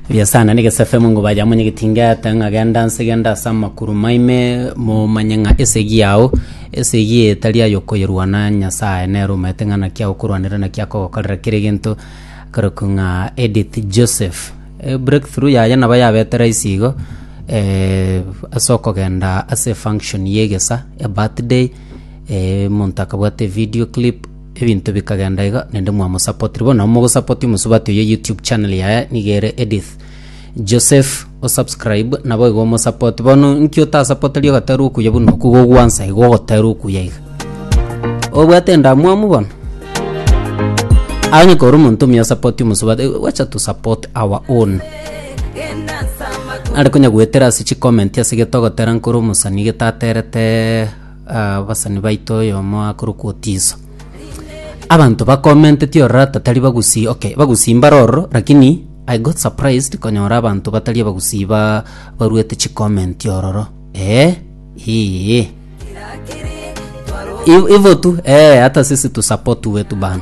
Buya sana nigese FM ngo baja mwenye gitinga ata ng'a genda nse genda ase amakuru maime momanye ng'a esegi yao esegi eye tari ayo koyerwana Nyasaye nere omanyete ng'a naki agokorwanera naki akogokorera kera egento akarokwa ng'a Edith Joseph. Eh, breakthrough yaye nabo yabete rahisi igo eh, ase okogenda ase function ya egesa ya birthday eh, omonto akabwate video clip Ebinto bikagenda iga nende mwamosapotiri bono nabo mogosapoti omosubati oye youtube channel yaye niga ere Edith Joseph osubscribe nabo iga omosapoti bono nki otasapoteri ogatera okuya buna oku iga ogwansa iga ogotera okuya iga obwate endamwamu bono aye onye kore omonto omuya osapoti omosubati eh, wacha to support our own nare konya goetera ase chicomment ase gete ogotera nkore omosani gete aterete Abasani baito oyomo akorokwa Otiso. Abanto bakomentetie ororo ata tari bagusi okay bagusi mbare ororo lakini I got surprised konyora abanto batari abagusi ba baruete chicomment ororo eh iih. Iv- ivo tu eh ata sisi tu support wetu bana.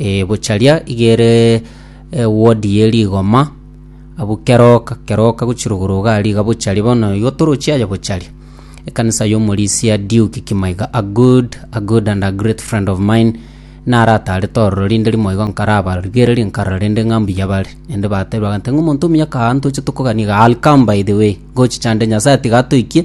Ee, bocharia igere ewodi ye rigoma, abwo keroka keroka gochirogoro iga aria iga bocharia bono igo torochia aye bocharia. Ekanisa y'omorisia Duke Kimaiga a good, a good and a great friend of mine, naratarete ororo rinde rimo igo nkarabarigereria nkarora rende ng'a mbuya bare. Naende batebire bagantebia ng'a omonto omuya kaaa ntoche tokoganie igaa, I'll come by the way, ngochicha nde Nyasae tiga atoikie.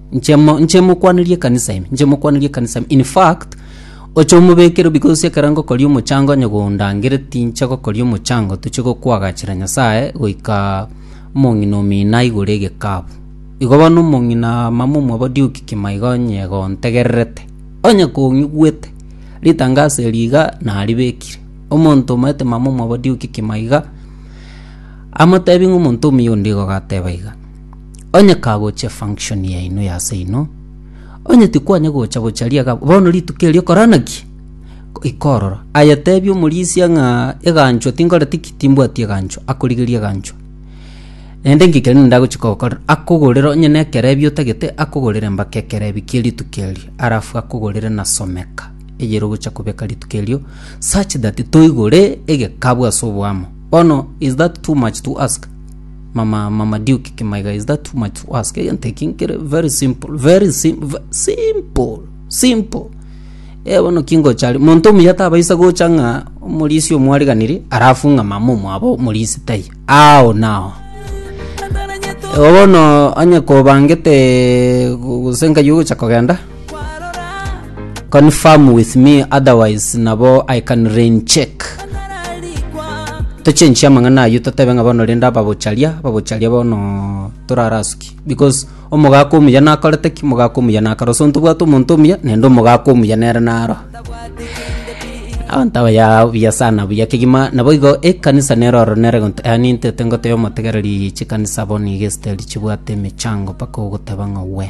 Inche mo- inche mokwanirie ekanisa ime, inche mokwanirie ekanisa ime. In fact, oche omobekere because ase ekero ngokoria omochango onye gondangere tinche gokoria omochango toche gokwagachera Nyasaye goika omong'ina omino aigure egekabu. Igo bono omong'ina ama momwabo Duke kima iga onye gontegererete, onye kong'igwete, ritangaso eri iga naribekire, omonto omaete mama omwabo Duke kima iga, amotebi ng'a omonto omuya onde igo gateba iga. Onye kagochia function yaino ya ase inwe, onye tikwanya gocha gocha riaga bono rituko erio korana ki? Goika ororo. Aye tebia omorisia ng'a eganchwa tinkoreti ki? Timbwati eganchwa. Akorigerie eganchwa. Naende inki kende ndagochia kogokorera? Akogorere onye na ekerebi otagete, akogorere mpaka ekerebi kie rituko erio. Alafu akogorere na someka eyere ogochia kobeka rituko erio such that toigure egekabu ase oboamo. Bono is that too much to ask? Mama Marmaduke Kimaiga, is that too much to ask? Egento eki nkere very simple, very sim, ve- simple, simple. Eh, bono kingochari monto omuya tabaisa gocha ng'a omorisi omwariganiri arafu ng'a mama omwabo omorisi tai ao nao bono onye kobangete gose nkayi ogocha kogenda Confirm with me otherwise nabo I can rain check. Tochenchie amang'ana ayio totebe ng'a bono rende ababocharia, ababocharia bono torarasuki because omogaka omuya nakorete ki? Omogaka omuya nakare so ntobwate omonto omuya naende omogaka omuya nere naro. Abanto abayaa buya sana buya kegima naboigo ekanisa nero oro nere gonto yaani ntete ngoteba omotegereri chikanisa bono iga esiteri chibwate emechango mpaka ogoteba ng'a we.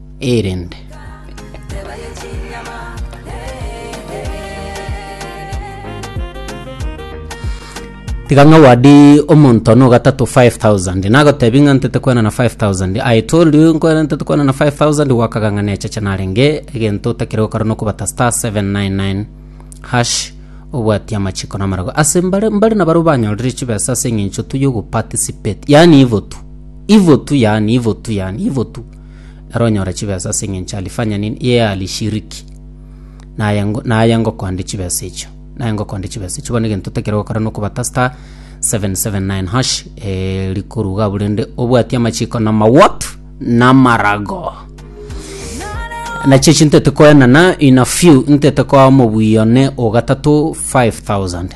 erende. Tiga ng'a wadi omonto one ogatato 5000 nagotebi ng'a ntete kwenana 5000 i told you nkwena ntete kwenana 5000 gwakaga ng'a necheche narenge egento otakire gokora nokobata star 799 hash obwatia amachiko na amarago ase mbare mbare na baria banyorire chibesa ase eng'encho tu yogoparticipate yaani ivo tu ivo tu yaani ivo tu yaani ivo tu ere onyore chibesa ase engencho ya Alifanyanin ye Ahali Shiriki, naye ngo- naye ngokonde chibesa echio naye ngokonde chibesa echio. Bono egento otakire gokora na okobata star 779 hash eh, rikoruga abwo rende obwati amachiko na amawot na amarago nachichi ntete koenana in a few ntete koa mobuya one ogatato 5000.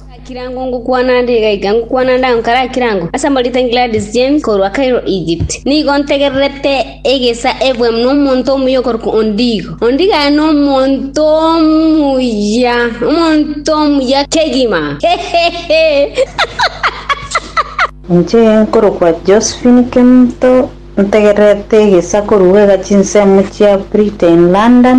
Ase ekirango ngokwana ande iga iga ngokwana ande agwo kare ekirango, ase Amoritani Gladys James korwa Cairo, Egypt. Nigo ntegererete egesa ebwe nomonto omuya okorokwa Ondigo. Ondigo aye nomonto omuya, omonto omuya kegima. Inche nkorokwa Josephine Kemto, ntegererete egesa korwa egachinsemo chia Britain, London.